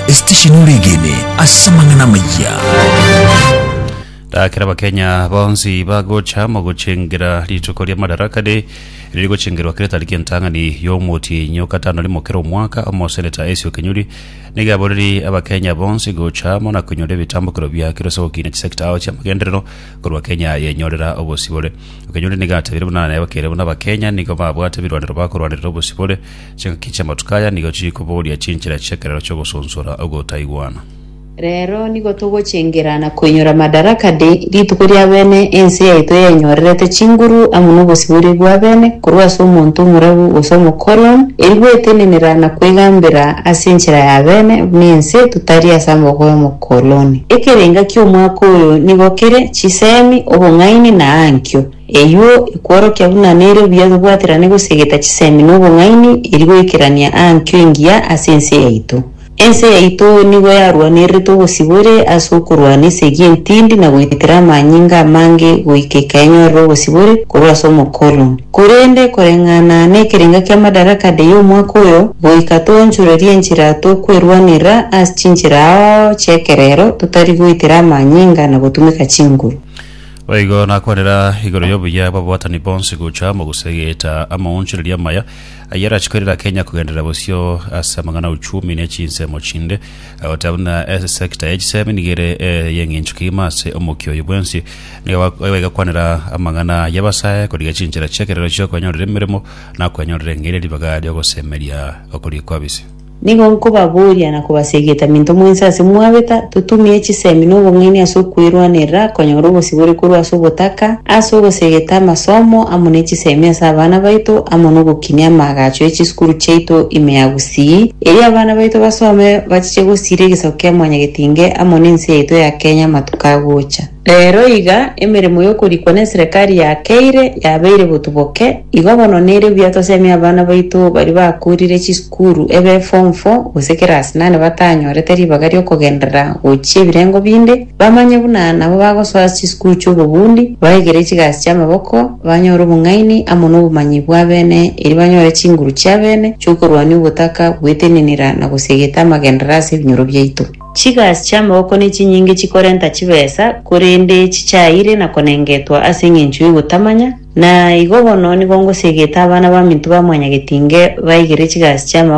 Esitesheni Oregene ase amang'ana amayia. Rakera Abakenya bonsi bagocha mogochengera rituko ria Madaraka Day riri gochengerwa kera etariki entang'ani y'omotienyi o gatano rimo kera omwaka. Omoseneta Acio Kenyuri nigo aboreri Abakenya bonsi gocha amo na koinyora ebitambokero bia kero ase ogokina chisecta ao chi'amagenderero korwa Kenya yenyorera obosibore. Kenyuri nigo atebirie buna naye bakere buna Abakenya nigo babwate ebirwanero bakorwanerera obosibore Chingaki chi'amatuko aya nigo chiri koboria chinchera chi'ekerero chi'ogosonsora ogotaigwana. Rero nigo togochengera na koinyora Madaraka Day, rituko ri'abene ense yaito eyenyorerete chinguru amo nobosibore bw'abene korwa ase omonto omorabu gose omokolon, eri gwetenenera na kwegambera ase enchera y'abene buna ense totari ase amaboko y'omokoloni. Ekerenga ki'omwaka oyo nigo kere, chisemi, obong'aini na aankio. Eyio ekworokia buna nere obuya tobwaterane gosiegeta chisemi na obong'aini eri goikerania aa nkio engiya ase ense yaito. Ense yaito nigo yarwanererete obosibore ase okorwana esegi entindi na goitera amanyinga amange goika ekaenyorera obosibore korwa ase omokoloni. Korende koreng'ana nekerenga kia Madaraka Day omwaka oyo, goika toonchorerie enchera tokwerwanerera ase chinchera ao chi'ekerero totari goitera amanyinga na gotumeka chinguru. Boigo nakwanera igoro y'obuya bw'ababatani bonsi gocha mogusa egeeta amaonchoreria amaya ayio arachi koirera Kenya kogenderera bosio ase amang'ana auchumi ne chinsemo chinde, goteba buna esector ya chisemi nigo ere ey'eng'encho kegima ase omokia oyo bwensi. Nigo baigakwanera amang'ana y'abasae korigia chinchera chi'ekerero chi'okwenyorera emeremo na okwenyorera eng'eria ribaga ri'ogosemeria okoria kw'abisi. Nigo nkobaboria na kobasegeta minto mwensi ase mwabeta, totumie chisemi na obong'aini ase okwerwanerera konyora obosibore korwa ase obotaka, ase ogosegeta amasomo amo ne chisemi ase abana baito, amo nogokinia amaagacho e chisukuru chiaito ime ya gusii, erio abana baito basome bachiche gosiira egesaku kia Mwanyagetinge amo ne ense yaito ya Kenya amatuko agocha. Reero iga emeremo y'okorikwa n'eserekari ya Keire yabeire botuboke, igo bono nere buya tosemie abana baito baria bakoorire chisukuru ebe Form Four gose Class Nane batanyorete ribaga ri'okogenderera gochia ebirengo binde, bamanye buna nabo bagosoa chisukuru chi'obobundi, baegere chigasi chi'amaboko, banyore obong'aini amo nobomanyi bw'abene, erio banyore chinguru chi'abene chi'okorwania obotaka, gwetenenera na gosiegeta amagenderera ase ebinyoro biaito. Chigasi chi'amaboko nechinyinge chikorenta chibesa, korende chichaeire na konengetwa ase engencho y'ogotamanya, na igo bono nigo ngosegete abana baminto ba mwanyagetinge baigere chigasi chi'amaboko,